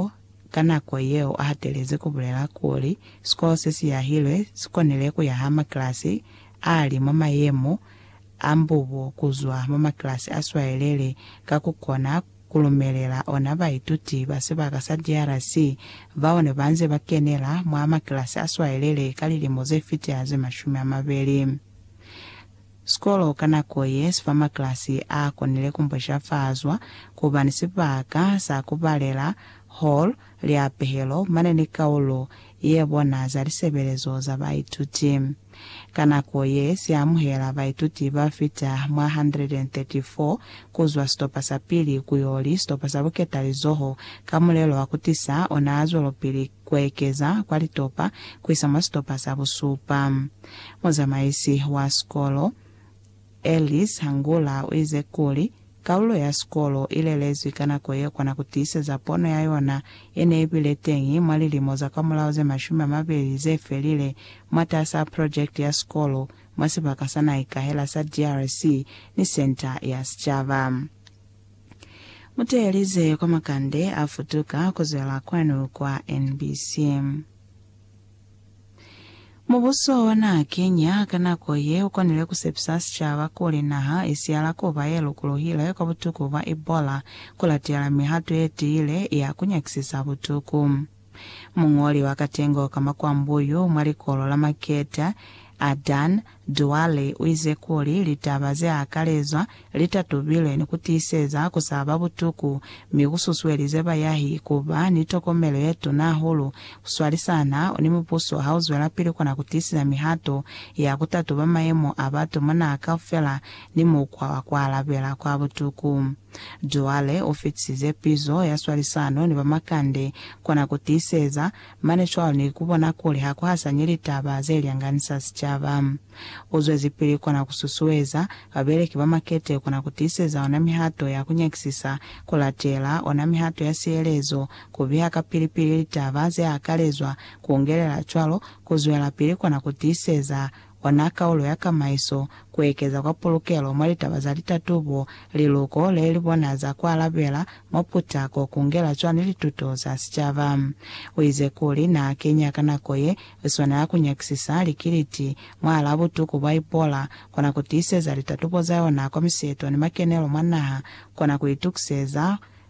Pao ka nako yeo a hatelezi ku bulela kuli sikolo se si yahilwe si konile ku yaha makilasi a li mwa mayemo a mbubo ku zwa mwa makilasi a swayeleli ka ku kona ku lumelela ona baituti ba sibaka sa DRC bao ne ba nze ba kenela mwa makilasi a swayeleli ka lilimo ze fita ze mashumi a mabeli Sikolo ka nako ye si fa maklasi a konile ku mposhafazwa ku ba ni sibaka sa ku balela, hall, lya pehelo mane ni kaulo ye bona za lisebelezo za baituti. Ka nako ye si amuhela baituti ba fita mwa 134 ku zwa sitopa sa pili ku yo li sitopa sa buketalizoho ka mulelo wa ku tisa ona zwelopili. kuekeza kwa litopa kuisa mwa sitopa sa busupa. Muzamaisi wa sikolo, Ellis Hangula, uize kuli, Kalulo ya sikolo ilelezwi ka nako ye kona kutiiseza pono ya yona yene ibile teñi mwa lilimo za kwamulaho ze mashumi amabeli zefelile mwatasaa project ya sikolo mwa sibaka sa naikahela sa DRC ni Centre ya Sicaba. Muteeleze kwa makande a futuka kuzwela kwanu kwa NBC. Mubuso wa naha Kenya ka nako ye ukonile kusepisa sicaba kuli naha isiyala kuba ye lukuluhile kwa butuku bwa Ebola kulatela mihato ye tiile ya kunyakisisa butuku. Muñoli wa katengo ka makwambuyu mwa likolo la Maketa, Adan Douali, u ize kuli litaba ze akalezwa li tatubilwe ni ku tiiseza ku sa ba butuku mi ku susuelize bayahi ku ba ni tokomelo ye tuna hahulu ku swalisana ni mubuso ha u zwelapili kona ku tiiseza mihato ya ku tatuba mayemo a batu mwa naha kaufela ni mukwa wa ku alabela kwa butuku. Cwale ufitisize pizo ya swalisano ni bamakande kona kutiiseza, mane cwalo ni kubona kuli hakuhasanyi litaba zelyanganisa sicaba. Uzwezipili kona kususueza babeleki bamakete kona kutiiseza ona mihato ya kunyakisisa, kulatela ona mihato ya sielezo, kubiha kapili-pili litaba zeakalezwa, kuungelela cwalo kuzwelapili kona kutiiseza Ona kaulo ya kamaiso, kuekeza kwa pulukelo mwa litaba za litatubo, liluko lelibona za kualabela mwa putako, kungela cwani lituto za sicaba. Uize kuli naakenya ka nako ye iswanela kunyakisisa likiliti mwahalaa butuku bwa Ebola, kona kutiiseza litatubo zayona kwa miseto ni makenelo mwa naha, kona kuitukiseza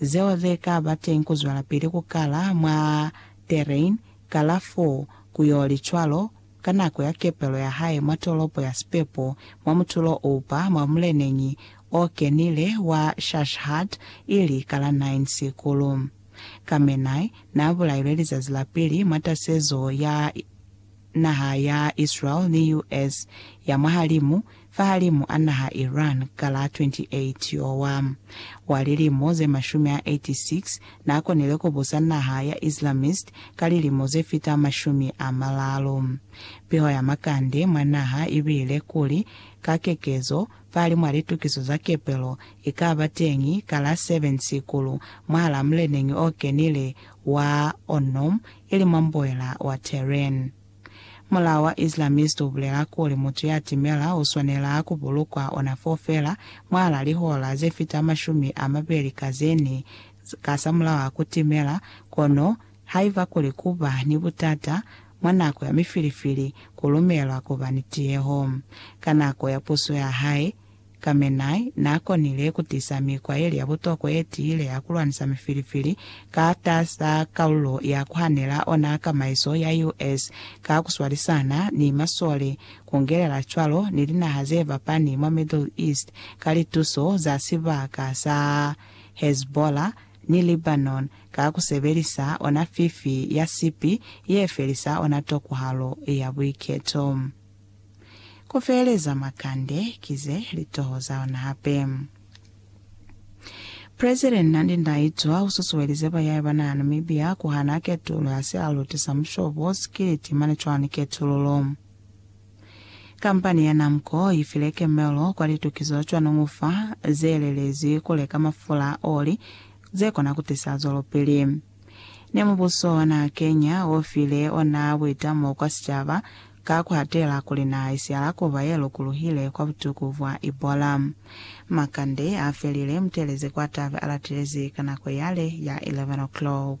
zeo ze ka ba teñi ku zwelapili ku kala mwa terrain, kalafo, ku yo li cwalo, ka nako ya kepelo ya hae mwa tolopo ya sipepo, mwa mutulo o upa mwa muleneñi o kenile wa Shashhat, ili ka la nine sikulu. Khamenei n'a bulailwe lizazi la pili mwa tasezo ya naha ya Israel ni US. ya mwahalimu, fahalimu a naha Iran ka la 28 Yowa wa lilimo ze mashumi a 86, n'a konile ku busa naha ya Islamist ka lilimo ze fita mashumi a malalu. Piho ya makande mwa naha i bile kuli, ka kekezo, fahalimw'a litukiso za kepelo, i ka ba teñi ka la 7 Sikulu mwahal'a muleneñi o kenile wa Onom, ili mwa mboela wa Tehran. Mulao wa Islamist ubulela kuli mutu ya timela uswanela kubulukwa ona foo feela mwahala lihora zefita mashumi amabeli ka zene ka samulaho a kutimela, kono haiba kuli kuba ni butata mwa nako ya mifilifili kulumelwa kuba ni tiyeho ka nako ya puso yahae, Khamenei n'a konile ku tisa mikwa ye li ya butokwa ye tiile ya ku lwanisa mifilifili ka taza kalulo ya ku hanela ona kamaiso ya US ka ku swalisana ni maswole, ku ngelela cwalo ni linaha ze fapani mwa Middle East ka lituso za sibaka sa Hezbollah ni Lebanon ka ku sebelisa ona fifi ya sipi ye felisa ona tokwahalo ya buiketo. Ku feeleza mwa kande ki ze li toho za ona hape. President Nandi Ndaitwah u susuelize bayahi ba naha ya Namibia ku hana ketulo ya sialuti sa mushobo, sikiliti mane cwalo ni ketululo. Kampani ya Namco i file kemelo kwa litukizo cwa nongufa ze lelezi ku leka mafula, oli, ze kona ku tisa zwelopili. Ne mubuso wa naha Kenya o file ona buitamo kwa sicaba ka ku hatela kuli naha i siala kuba ye lukuluhile kwa butuku bwa Ebola. Makande a felile mutelezi kwa tabe a latilezi ka nako yale ya 11 o'clock.